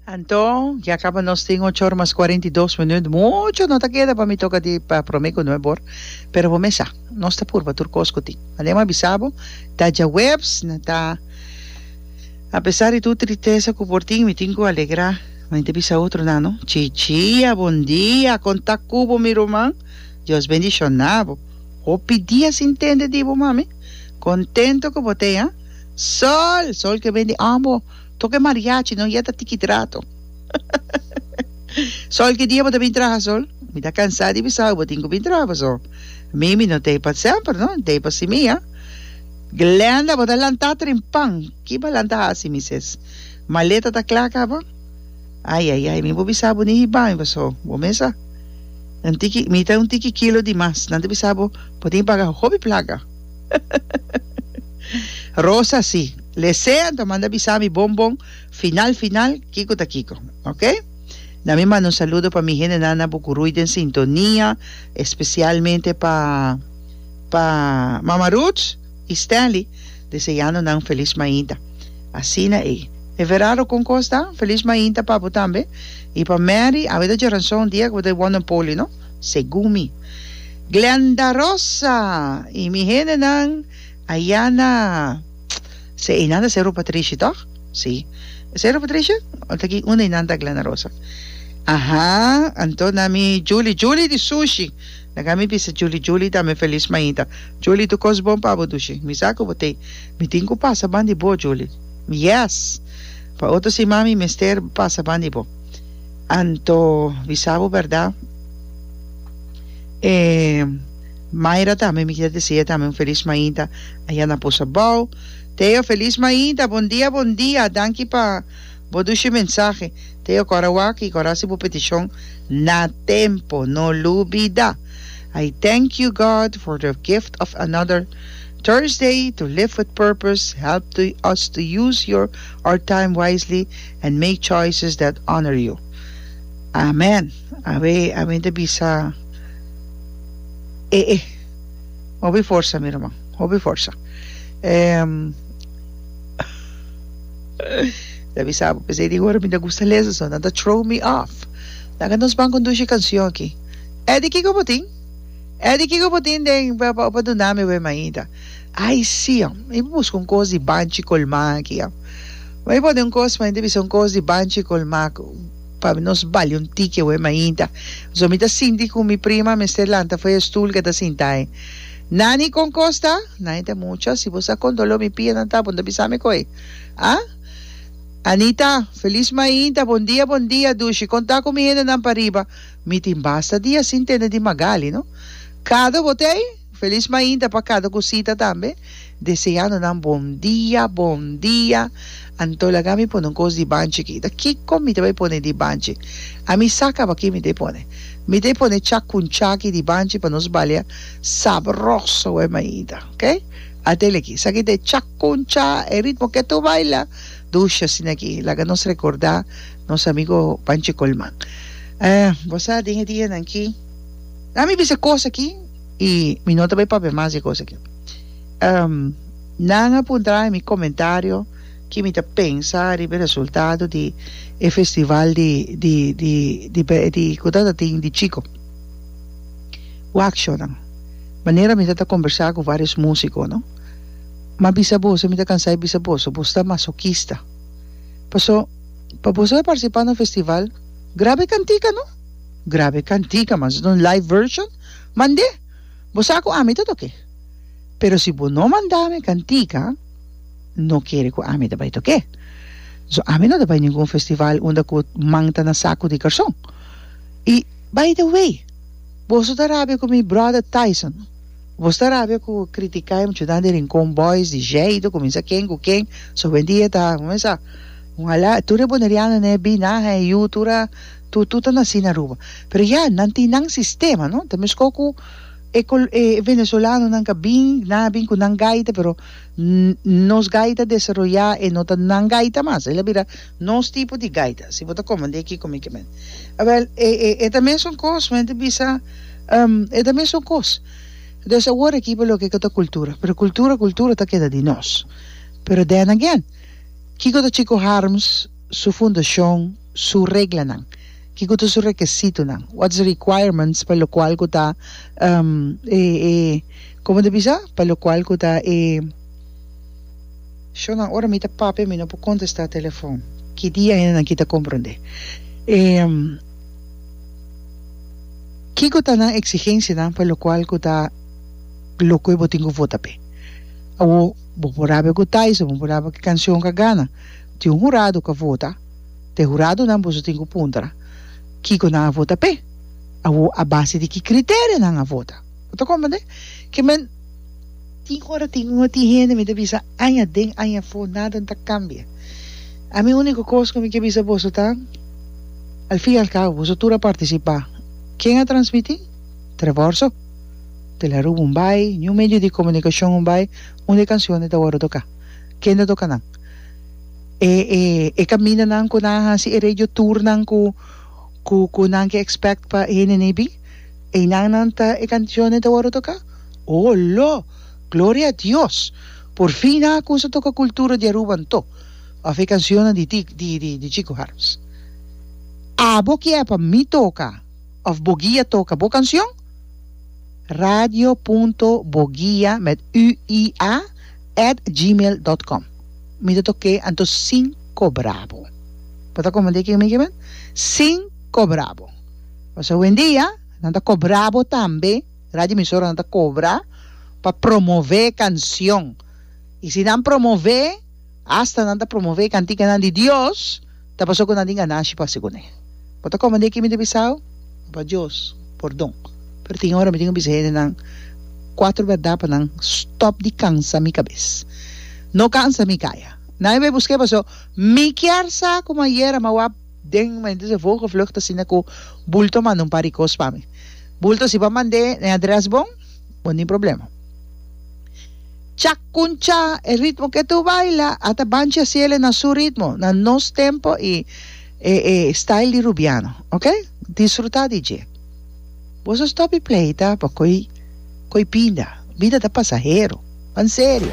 Anto, ya caba nos tin ocho or mas cuarenta y dos minuut. Mucho no ta keda pa mi toca di pa prome cu nuee bor. Pero bo mesa, nos ta purba tur cos cu tin. Mane bo a bisa bo, ta djaweps, no ta. Apesar di tur tristesa cu por tin, mi tin cu alegra. Mi ta bisa otro nan, no. Chichia, bon dia, con ta cu bo mi ruman? Dios bendiciona bo. Hopi dia sin tende di bo, mami. Contento cu bo t'e, ha. Sol! Sol ke ben di ambo tok e mariachi no yeta tiki trato. Sol, ki dia bo ta bin traha Sol? Mi ta kansa di bisa bo tin ku bin traha paso mi mi no tei pa semper no, mi tei pa simi a. Glenda, bo ta lanta trempan, ki bo a lanta hasi mi ses? Maleta ta kla kaba? Ayayay mi bo bisa bo ni hiba mi paso bo mes a un tiki mi ta un tiki kilo di mas nan ta bisa bo bo tin paga hopi plaka. Rosa si. Lese anto manda bisa mi bon bon final final kiko ta kiko. Ok? Na mi manda un saludo pa mi hende na na Bucurui den sintonia especialmente pa pa Mama Ruth y Stanley deseando nan feliz mainta. Asina e. E verado con costa feliz mainta pa bo tambe y pa Mary a bo ta djoranso un dia cu bo ta wonder poli no. segun mi. Glenda Rosa y mi hendenan aya na se einan ta Cerro Patricia toch? Si. E Cerro Patricia? O ta aki unda einan ta Glenda Rosa? Aha anto na mi Julie Julie di sushi na ka mi bisa Julie Julie tambe feliz maita Julie tu cos bon pa bo dushi mi sa cu bo tey mi tin cu pasa ban di bo Julie yes pa otro siman mi mester pasa ban di bo. Anto bisa bo berdad e Myra tambe mi kier desea tambe un feliz mainta aya na Bosa Bou Theo feliz mainta bon dia bon dia danki pa bo dushi mensahe Theo kor a wak y kor a hasi bo peticion na tempo no lo bida I thank you God for the gift of another Thursday to live with purpose help to us to use your our time wisely And make choices that honor you. Amen. Awe a mi ta bisa e e. Hopi forsa mi ruman. Hopi forsa. Em ta bisa bo pesey di ora mi ta gusta lesa so nan ta throw mi off. Laga nos ban conduci cancion aki. Eddy kiko bo tin? Eddy kiko bo tin den pa pa duna mi awe maita. Ai si, a mi busca un cos di banchi colma aki, a mi por den un cos ma e ta bisa un cos di banchi colma cu pa nos bali un tiki awey mainta, so mi ta sinti cu mi prima a mester lanta fo'i e stoel cu e ta sinta'i, Nani con cos ta? Nani ta mucha, si bo sa con dolor mi piernan ta, bo no ta bisami co'e, a? Anita, Feliz mainta, bon dia, bon dia, Dushi, con ta cu mi hendenan pariba, mi tin basta dia sin tende di Magali, no? Cado bo t'ei? Feliz mainta pa cada cosita tambe. Deseando nan bon dia, bon dia. Anto laga mi pone un cos dibanchi aki. Ta kico mi ta bay pone dibanchi? A mi sa caba ki mi ta pone. Mi ta pone cha cun chaki dibanchi pa nos balia sabroso we mainta. Ok? A tele aki. Sa ki ta e cha cun cha, e ritmo ke tu baila. Dushi asina aki. Laga nos recorda nos amigo Panchi Colman. Eh, bo sa den e dianan ki. Dami bisa cos aki. y mi no ta bay papia mas di e cosa aki. Um, nan a puntra na mi comentario ki mi ta pensa riba e resultado di e festival di, di, di, di, di, di cu ta ta tin di chico. Waksho nan. Manera mi ta ta conversa cu varios musico, no? Ma bisa boso, mi ta cansa di bisa boso, bos ta masoquista. Paso, pa boso a participa na un festival, graba e cantica, no? Graba e cantica, mas no un live version. Mand'é, bo sa ku ami ta tok'é. Pero si bo no manda mi kantika, no kere ku ami ta bai tok'é. So ami no ta bai ningun festival unda ku man ta na saku di karson. I, by the way, boso ta rabia ku mi bròda Tyson. Boso ta rabia ku kritiká e muchanan di Rincon Boys, di Jeido, ku minsa ken ku ken. So hoendia ta, bo mester sa, un halá, tur e bonerianonan, e binaha, e yu, tur a. Tutu ta naci na Aruba. Pero ya, nan tin nan sistema, no? Ta mescó cu e col, e venezolanonan ca bin, nan a bin cu nan gaita, pero n-n nos gaita desaroyá e no ta nan gaita mas. El a bira nos tipo di gaita. Si bo ta comand'é aki con mi ke men. Awel, e, e, e ta mesun cos, men ta bisa, um, e ta mesun cos. Entonces awor aki pa loke cu ta cultura. Pero cultura, cultura ta keda di nos. Pero then again, kico ta Chico Harms su fundacion? su reglanan? Kiko ta su rekesitonan? What's the requirements pa lokual ku ta e e komo ta bisa? Pa lokual ku ta e Shownan ora mi ta papia mi no por kontestá telefòn ki dia hende nan ki ta komprondé e kiko ta nan eksigensianan pa lokual ku ta lo kue bo tin ku vota p'e? Awo bo por rabia ku Thais o bo por rabia ku e kanshon ka gana tin un hurado ku a vota. Te huradonan boso tin ku puntra kiko nan a vota p'e. Awo a base di ki kriterio nan a vota. Bo ta komprende? Ke men tin ora tin un tin hende mi ta bisa aña den aña afó nada no ta kambia. Ami úniko kos ku mi ke bisa boso ta al fin y al cabo boso tur a partisipá. Ken a transmití? Trevor so. De la Rubia un bai, New Medio di Komunikashon un bai, unda e kanshonnan ta wòrdu toká? Kende a toka nan? E e e caminanan cu nan a haci e radio tournan cu cu cu nan ke expect pa e hende nei bin einan nan ta e cancionnen ta worde toca o lo gloria a Dios por fin nan a cusa toca cultura di Aruba anto of e cancionnan di ti di di di Chico Harms abo kier pa mi toca of bo guia toca bo cancion radio punto boguia met ü i a at gmail dot com mi ta tok'é anto sin kobra bo bo ta komand'é ken mi kiben sin kobra bo pask awendia nan ta kobra bo tambe radio emisora nan ta kobra pa promove kansion i si nan promove asta nan ta promove kantikan nan di dios Ta pasó cu nan tin ganashi pa haci cune. Bo ta comende ki mi ta bisao? Papa Dios, pordon. Pero tin ora mi tin cu bisa hendenan cuatro berdad pa nan stop di cansa mi cabes. No cansa mi caya. Nan a bay busc'e paso mi kier sa como ayer a mawap den momento de vogelvlucht asina cu bulto manda un par di cos pa mi. Bulto si bo a mand'e den adres bon. Bon tin problema. Chacuncha e ritmo ke tu baila ata bancha ciele na su ritmo, na nos tempo y e e style di Rubiano, ok? Disfruta di dje. Boso stop di pleita pa coy coy pinda. Bida ta pasahero. Pan serio.